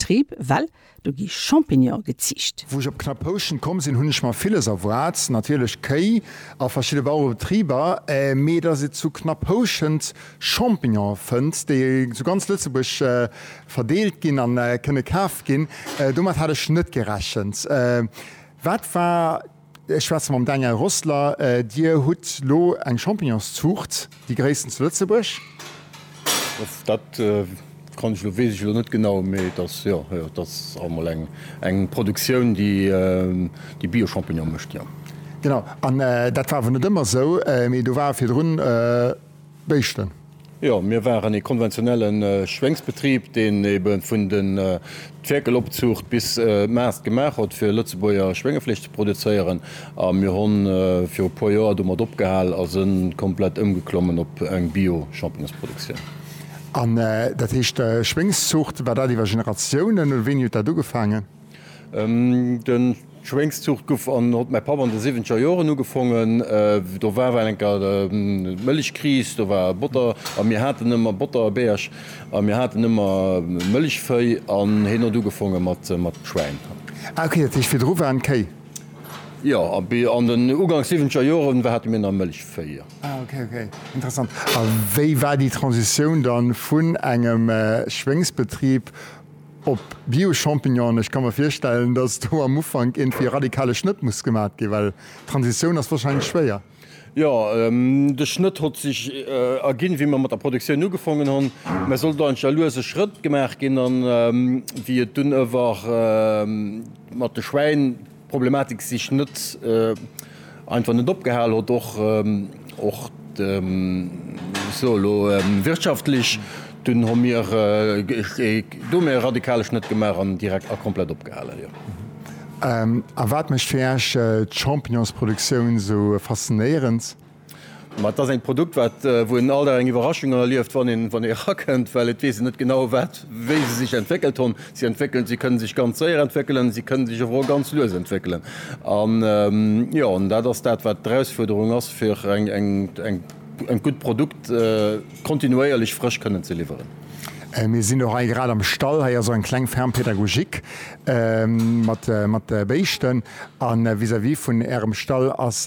Betrib, well do gi Champignone geziicht. Wou ech op Knapphouschent komm sinn, hunn ech mer villes erwaart, natierlech Kéi a verschidde Bauerebetriber, mee dass ee zu Knapphouschent Champignone fënnt, déi zu ganz Lëtzebuerg verdeelt ginn a kënne kaf ginn, domat hat ech net gerechent. Wat war. Ech schwätze mam Daniel Rossler. Dir hutt elo eng Champignonszuucht, déi gréissten zu Lëtzebuerg. Dat kann ech elo, weess ech elo net genau, mee et ass, jo, jo, et ass emol eng, eng Produktioun, déi, déi Bio-Champignonen mécht, jo. Genau. An dat war awer net ëmmer esou, mee do war virdrun. Béischten. Jo, mir waren ee konventionelle Schwéngsbetrib, deen ebe vun den d'Fäerkelopzuucht bis d'Maast gemaach huet, fir Lëtzebuerger Schwéngefleesch ze produzéieren. A mir hu viru puer Joer domat opgehal a si komplett ëmgeklommen op eng Bio-Champignonsproduktioun. An dat heescht Schwéngszuucht, war dat iwwer Generatiounen oder wéini huet dat ugefaangen? Den Schwéngszucht guff an hott mäi Papp an de siwwenzeger Joeren ugefongen. Do war ewell enker Mëllechkris, do war Botter a mir haten ëmmer Botterbierg a mir haten ëmmer Mëllechvéi an heen hott ugefongen mat Schwäin. Ah ok, dat heescht virdru waren d'Kéi. Jo, an den ugangs siwwenzeger Joeren war hate mir nach Mëllechvéi, jo. Ah ok, ok, interessant. A wéi war déi Transitioun dann vun engem Schwéngsbetrib? Op Bio-Champignonen, ech ka mer virstellen, datt do am Ufank iergendwéi e radikale Schnëtt muss gemat ginn, well d'Transitioun ass wahrscheinlech schwéier. Jo, de Schnëtt hott sech erginn, wéi mer mat der Produktioun ugefongen honn, mä sollt eigentlech a luese Schrëtt gemaach ginn. An wéi et dunn ëwer mat de Schwäin, D'Problematik sech net einfach net opgehal hott, och sou elo wirtschaftlech. Dunn hu mir do méi e radikale Schnëtt gemaach an direkt a komplett opgehalen, jo. A wat mécht fir Iech d'Champignonsproduktioun sou faszinéierend? Ma et ass eng Produkt, wat, wou een alt eng Iwwerraschung erlieft, wann een, wann ee erakënnt, well et weess een net genau, wat, wéi se sech entwéckelt hunn. Si entwéckelen, si kënnen sech ganz séier entwéckelen, si kënnen sech awer och ganz lues entwéckelen. An, jo, an dat ass dat, wat d'Erausfuerderung ass, fir eng, eng, eng, eng gutt Produkt kontinuéierlech frësch kënnen ze liwweren. Mir sinn och hei grad am Stall. Hei ass och eng kleng Ferme pédagogique mat, mat Béischten. A vis-à-vis vun Ärem Stall ass,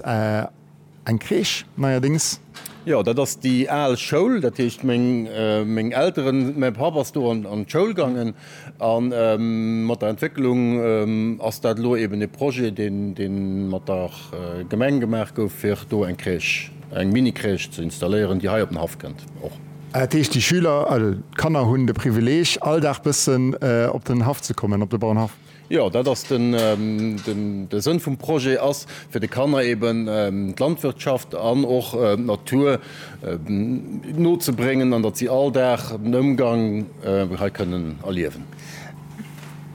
Eng Crèche neierdéngs? Jo, dat ass déi al Schoul. Dat heescht, meng Elteren, mäi Papp ass do an d'Schoul gaangen. A mat der Entwécklung ass dat elo eben e Projet, dee mat der Gemeng gemaach gouf, fir do eng Crèche, eng Mini-Crèche ze installéieren, déi hei op den Haff kënnt och. Dat heescht, déi Schüler, also d'Kanner hunn de Privileeg, all Dag bëssen op den Haff ze kommen, op de Bauernhaff? Jo, dat ass den, de Sënn vum Projet ass, fir de Kanner eeben d'Landwirtschaft an och d'Natur nozebréngen an datt si all Dag den Ëmgang hei kënnen erliewen.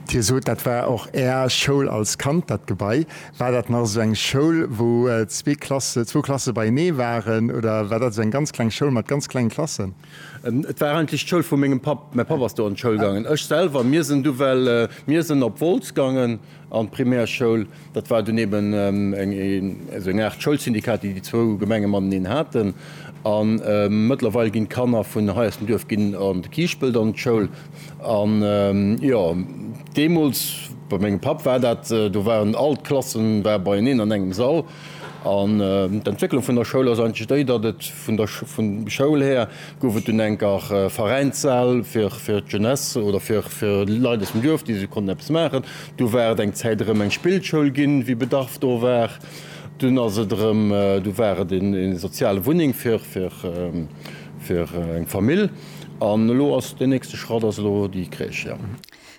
Dir sot, dat war och Är Schoul als Kand, dat Gebai. War dat nach esou eng Schoul, wou zwee Klasse, zwou Klasse beienee waren oder war dat esou eng ganz kleng Schoul mat ganz klengen Klassen? Et war eigentlech d'Schoul vu mengem Papp. Mäi Papp ass do an d'Schoul gaangen. Ech selwer, mir sinn du well, mir sinn op Wolz gaangen an d'Primärschoul. Dat war dunn eben eng, esou eng Aart Schoulsyndikat, déi déi zwou Gemenge mateneen haten. A mëttlerweil ginn d'Kanner vun hei aus dem Duerf ginn an de Kiischpelt an d'Schoul. An, jo, deemools, bei mengem Papp war dat, do waren all d'Klassen, war beieneen an engem Sall. An d'Entwécklung vun der Schoul ass eigentlech déi, datt et vun der vun Schoul här gouf et dunn enker Veräinssäll fir fir d'Jeunesse oder fir fir Leit aus dem Duerf, déi se konnten eppes maachen. Du war et eng Zäit erëm eng Spillschoul ginn, wéi Bedarf do war. Dunn ass et erëm du war et een ee soziale Wunneng fir fir fir eng Famill. An elo ass deen nächste Schratt ass elo déi Crèche, jo.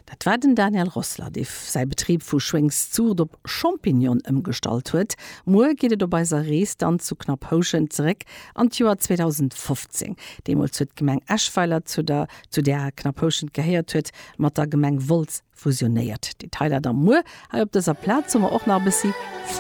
Dat war den Daniel Rossler, dee säi Betrib vu Schwéngszurd op Champignon ëmgestallt huet. Muer geet et op eiser Rees dann zu Knapphouschen zeréck an d'Joer 2015. Deemools huet d'Gemeng Eschweiler, zu der zu där Knapphouschent gehéiert huet, mat der Gemeng Wolz fusionéiert. Detailer da muer. Hei op dëser Plaz hu mer och nach e bëssi.